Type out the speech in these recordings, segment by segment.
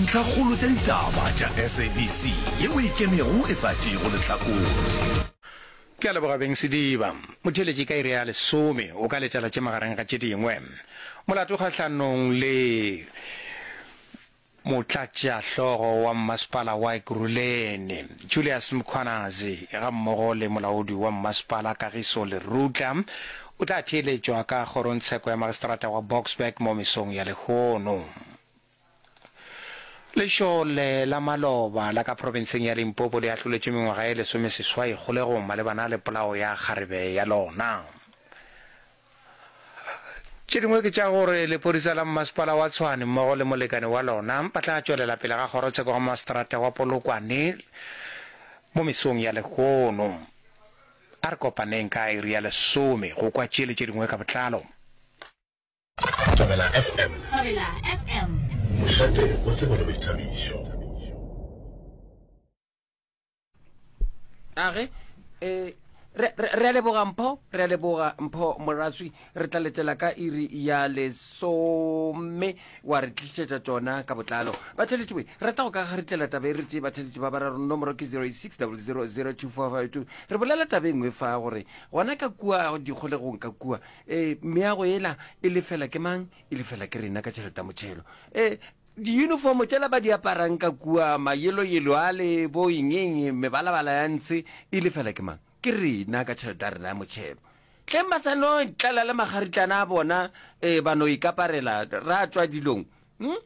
Ntlhakgolo tša ditaba tša SABC ye o e kemego e sa tšeego lehlakore. Ke a leboga Beng Sediba. Motheeletši ka iri ya lesome o ka letela tše magareng ga tše dingwe. Molato kgahlanong le Motlatšahlogo wa Mmasepala wa Ekurhuleni, Julius Mkhwanazi gammogo le Molaodi wa Mmasepala Kagiso Lerutla o tla theeletšwa ka Kgorongtsheko ya Magistrata wa Boksburg mo mesong ya lehono. Lešole la maloba la ka profenseng ya Limpopo le ahloletšwe mengwaga e lesomeseswai kgolegong malebana le polao ya kgarebe ya lona. Tše dingwe ke tša gore lepodisa la mmasepala wa Tshwane mmogo le molekane wa lona ba tla tšwelela pele ga kgorotsheko ga maseterata wa Polokwane mo mesong ya lehono. A re kopaneng ka iri ya lesome go kwa tše le tše dingwe ka botlalo. Thobela FM. Thobela FM. Mošate o tsebo le boithabišo. Age, eh, re re a leboga mpho re a leboga mpho moraswi re tla letela ka iri ya lesome wa re tlisetsa tsona ka botlalo batheletši we rata go ka ga re tlela taba e re tse batheletši ba bararo nomoro ke 06000245 re bolela taba e nngwe fa gore gona ka kua dikgolegong ka kua ee meago yela e lefela ke mang e lefela ke rena ka tšheleta motšhelo ee diuniformo tšela ba di aparang ka kua mayelo yelo a le bo engeng mebalabala ya ntshe e lefela ke mang ke rena ka tšheleta ya rena ya motšhelo tleng ba sa no tlala le magaritlana a bona um ba no ikaparela ra tswa dilong Mm?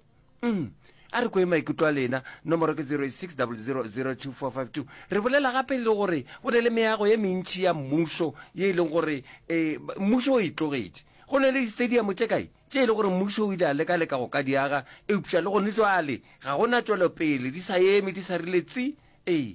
Mm. a re kwe maikutlo a lena nomoro ke 06000245 re bolela gape le gore go ne le meago ye mentši ya mmušo ye e leng gore um mmušo o e tlogetše go ne le di-stadium tše kae tše e le gore mmušo o ile a leka-leka go ka diaga eupša le gone jwale ga gona tšwelopele di sa eme di sa rile tsi ee